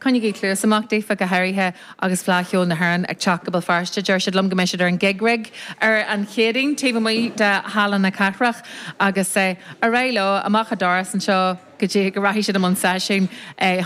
Coinnigí cluas amach daofa, go háirithe agus Fleadh Cheoil na hÉireann ag teacht go Béal Feirste. Deir siad liom go mbeidh siad ar an Gig Rig ar an Chéadaoin, taobh amuigh de Halla na Cathrach, agus ar aghaidh leo amach an doras anseo go dtí go rachaidh siad i mbun seisiúin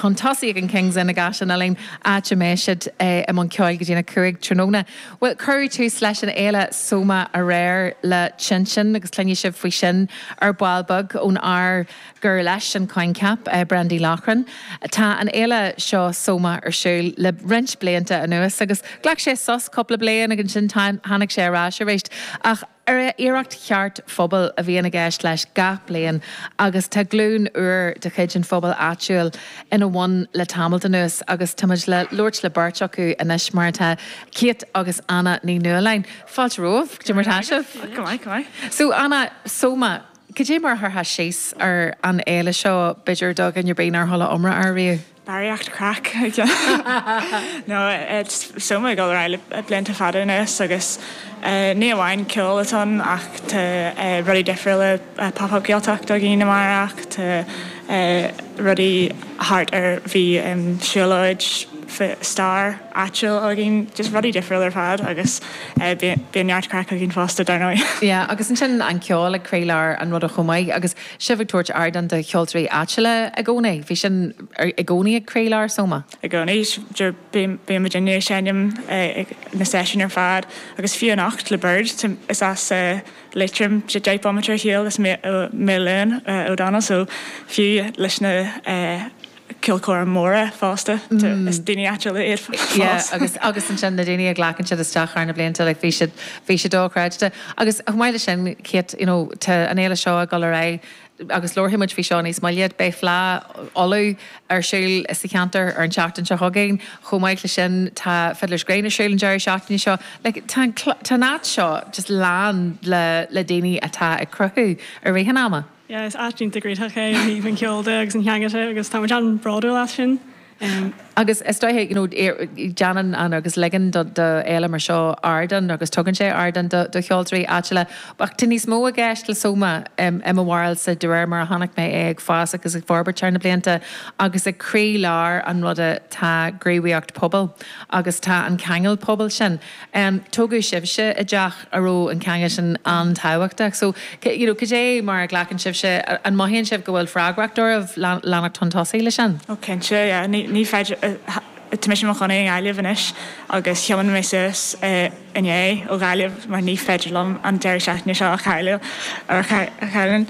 chun tosaigh ag an Kings Inn i gCaisleán Uidhilín, áit a mbeidh siad i mbun ceoil go dtí'n 5 tráthnóna. Bhuel, cuireadh tús leis an fhéile Soma aréir le TinSin agus cluinfidh sibh faoi sin ar ball beag ón fhear, gur leis an coincheap, Brandy Loughran. Tá an fhéile seo Soma ar siúl le roinnt blianta anuas agus ghlac sé sos cúpla bliain agus ansin tháinig sé ar ais arís. Ach iarracht cheart phobail a bhíonn i gceist leis gach bliain agus tá glúin úr de chuid an phobail áitiúil ina bhun le tamalt anuas agus táimid le labhairt le beirt acu anois mar atá Kate agus Anna Ní Nualláin. Fáilte romhaibh. Go raibh maith agat. So Anna, Soma. Cad é mar a chuirfeá síos ar an fhéile seo, b'fhéidir, do dhuine ar bith nár chuala iomrá air riamh? Barraíocht craic, a Chill. Nó tá Soma ag dul ar aghaidh le blianta fada anuas agus ní amháin ceol atá ann ach tá rudaí difriúla, pop-up Gaeltacht do dhaoine amárach, tá rudaí thart ar bhí Siúlóid Stair, áitiúil againn, just rudaí difriúil ar fad agus bíonn neart craic againn fosta dar ndóigh. Yeah agus ansin an ceol ag croílár an ruda chomh maith agus sibh ag tabhairt ardán do cheoltóirí áitiúla i gcónaí, bhí sin i gcónaí ag croílár Soma? I gcónaí, bíonn muidinne ag seinm ag na seisiúin ar fad agus fiú anocht le Bird, is as Liatroim de Jake Bomaiter a sheol is Milène O'Donnell so fiú leis na, ceoltóirí móra fosta. Is daoine áitiúla iad fós. Yeah, agus ansin na daoine a ghlacann siad isteach thar na blianta, like bhí sé, bhí sé dochreidte. Agus chomh maith leis sin, Kate, you know, tá an fhéile seo ag dul ar aghaidh agus labharfaidh muid faoi seo níos moille, beidh Fleadh Uladh ar siúl sa cheantar ar an tseachtain seo chugainn. Chomh maith leis sin, tá Fiddler's Green ar siúl an deireadh seachtaine seo. Like, tá an, tá an áit seo just lán le, le daoine atá ag cruthú i rith an ama. Yeah, is áit iontach cruthaitheach é ó thaobh an cheoil de agus an theanga de agus tá muid an-bhródúil as sin. Agus is dóiche, you know, déanann an, agus ligeann do fhéile mar seo ardán agus tugann sé ardán do cheoltóirí áitiúla. Ach tá níos mó i gceist le Soma i mo bharúilsa de réir mar a chonaic mé é ag fás agus ag forbairt thar na blianta agus ag croí lár an ruda tá gníomhaíocht pobail agus tá an ceangal pobail sin. Tógadh sibhse i dteach a raibh an ceangal sin an-tábhachtach so, you know, cad é mar a ghlacann sibhse, an mothaíonn sibh go bhfuil freagracht oraibh leanacht chun tosaigh leis sin? Oh cinnte, yeah, ní, ní féidir, tá mise i mo chónaí i nGaillimh anois agus thiomáin mé suas inné ó Ghaillimh mar ní féidir liom an deireadh seachtaine seo a chailleadh, a chailleann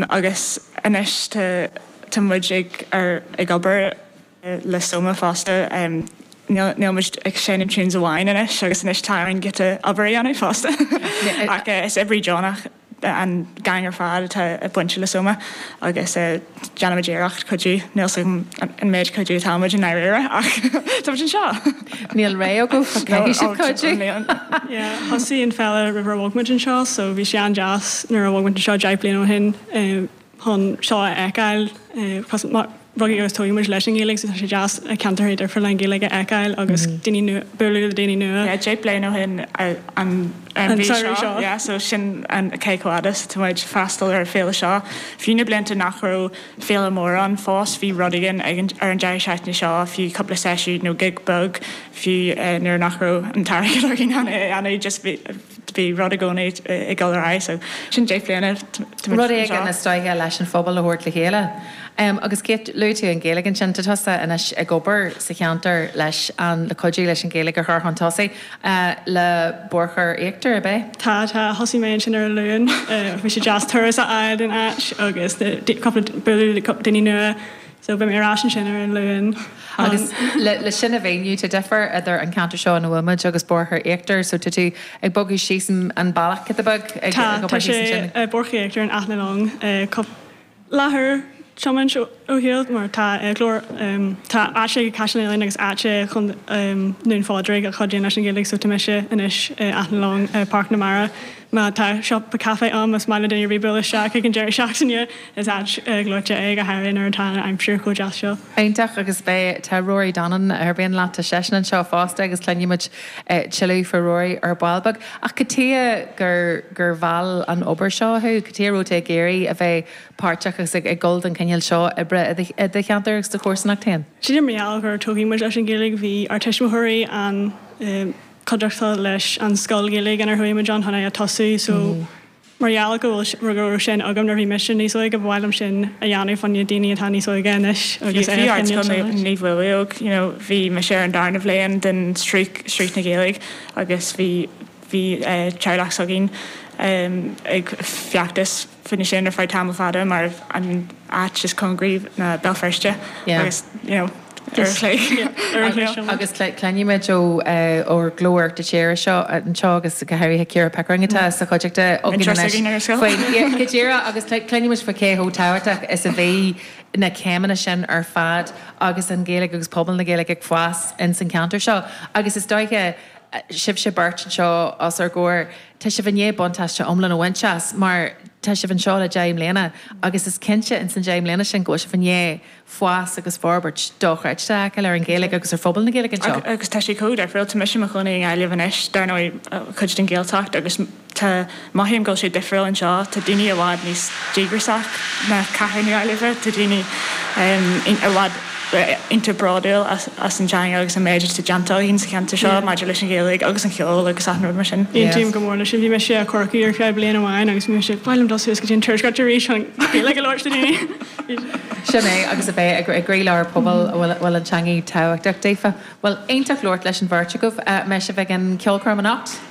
agus anois tá, tá muid ag, ar, ag obair, le Soma fosta, níl muid ag seinm tunes amháin anois agus anois tá orainn giota obair a dhéanamh fosta ach is oibrí deonach an gang ar fad atá bainte le Soma agus déanaimid iarracht cuidiú, níl a fhios agam an méid cuidiú atá muid i ndáiríre ach tá muid anseo! Níl rogha agaibh ach caithfidh sibh cuidiú! Yeah, thosaigh an Féile roimh ar bhog muid anseo so bhí sé an-deas nuair a bhog muid anseo deich bliana ó shin. chun seo a fheiceáil. Rugadh agus tógadh muid leis an nGaeilge so tá sé deas ceantracha difriúla an Ghaeilge a fheiceáil agus daoine nua, bualadh le daoine nua. Yeah, deich bliain ó shin an mhí seo, yeah, so sin cé chomh fhada is atá muid, freastal ar féile seo. Fiú na blianta nach raibh féile mór ann fós, bhí rud éigin ar an deireadh seachtaine seo, fiú cúpla seisiún nó gig beag, fiú nuair nach raibh an t-airgead againn chun é a dhéanamh, just bhí, bhí rud i gcónaí ag dul ar aghaidh. So, sin deich mbliana, tá muid anseo. Rud éigin is dóiche leis an phobal a thabhairt le chéile. Agus Kate, luaigh tú an Ghaeilge ansin, tá tusa anois ag obair sa cheantar leis an, le cuidiú leis an Ghaeilge a chur chun tosaigh, le Boirche Íochtar, ab é? Tá, tá. Thosaigh mé ansin ar an Luan. Bhí sé deas turas a fháil don áit agus cúpla, bualadh le cúpla daoine nua. So beidh mé ar ais ansin ar an Luan. Agus le sin a mhíniú, tá difear idir an ceantar seo ina bhfuil muid agus Boirche Íochtar, so tá tú ag bogadh síos an bealach giota beag, ag obair thíos ansin? Tá, tá sé Boirche Íochtar in Áth na Long, cupla leathuair tiomáint ar shiúl, mar tá Glór, tá áit ag Caisleán Uidhilín agus áiteacha i nDún Pádraig a chuidíonn leis an Ghaeilge, so tá mise anois in Áth na Long, Páirc na Mara. Má tá siopa caife ann, más maith le duine ar bith bualadh isteach ag an deireadh seachtaine, is áit ghleoite é, go háirithe nuair atá an aimsir chomh deas seo. Iontach agus beidh tá Rory Donnan a oibríonn leat, tá seisean anseo fosta agus cluinfidh muid tuilleadh faoi Rory ar ball beag. Ach cad tuige gur gur mheall an obair seo thú? Cad tuige a raibh tú ag iarraidh a bheith páirteach agus ag dul don chineál seo oibre i do i do cheantar agus do chomharsanacht féin? Sin mar gheall gur tógadh muid leis an Ghaeilge bhí ár tuismitheoirí an eh, cuideachtúil leis an scoil Ghaeilge inar chuaigh muid ann chun é a tosú. So, mar gheall go bhfuil, go raibh sin agam nuair a bhí mise níos óige, ba mhaith liom sin a dhéanamh fá choinne daoine atá níos óige anois agus é a choinneáil suas. Bhí Naomh Maolmhaodhóg, you know, bhí mise ar an darna bhliain den sraith, sraith na Gaeilge agus bhí, bhí teaghlach s'againn ag feachtas, fá choinne sin ar feadh tamall fada mar an áit is cóngaraí ná Béal Feirste agus you know ar a chlé ar an gclé. Agus cluinfidh muid ó Ghlór Uachtar Tíre seo anseo agus go háirithe Ciara Pickering atá sa chuideachta againn anois. Múinteoir s'againn ar an scoil. Bhí go díreach agus cluinfidh muid faoi cé chomh tábhachtach is a bhí na céimeanna sin ar fad agus an Ghaeilge agus pobal na Gaeilge ag fás ins an ceantar seo. Agus is dóiche sibhse beirt anseo os ár gcomhair, Tá sibh i ndiaidh buntáiste iomlán a bhaint as mar tá sibh anseo le deich mbliana agus is cinnte ins na deich mbliana sin go bhfuil sibh i ndiaidh fás agus forbairt dochreidte a fheiceáil ar an Ghaeilge agus ar phobal na Gaeilge anseo. Agus tá sé chomh difriúil, tá mise i mo chónaí i nGaillimh anois, dar ndóigh cuid den Ghaeltacht agus tá, mothaím go bhfuil sé difriúil anseo, tá daoine i bhfad níos díograsach ná cathair na Gaillimhe, tá daoine i bhfad. iontach bródúil as an teanga agus an méid atá déanta againn sa cheantar seo maidir leis an Ghaeilge agus an cheol agus achan rud mar sin. Aontaím go mór leis sin. Bhí mise i Corcaigh ar feadh bliain amháin agus bhí mise ag, b'fhearr liom dul suas go dtí an tuaisceart arís chun Gaeilge a labhairt le daoine. Sin é, agus a bheith i gcroílár pobail a bhfuil an teanga tábhachtach daofa. Bhuel, iontach labhairt leis an bheirt agaibh. An mbeidh sibh ag an cheolchoirm anocht?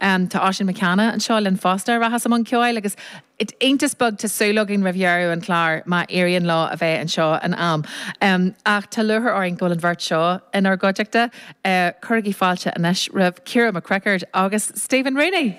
Tá Oisín Mac Cana anseo linn fosta a rachas i mbun ceoil agus iontas beag tá súil againn roimh dheireadh an chláir má éiríonn leo a bheith anseo in am. Ach tá lúchair orainn go bhfuil an bheirt seo inár gcuideachta. Cuirigí fáilte anois roimh Ciara McCrickard agus Stephen Rooney!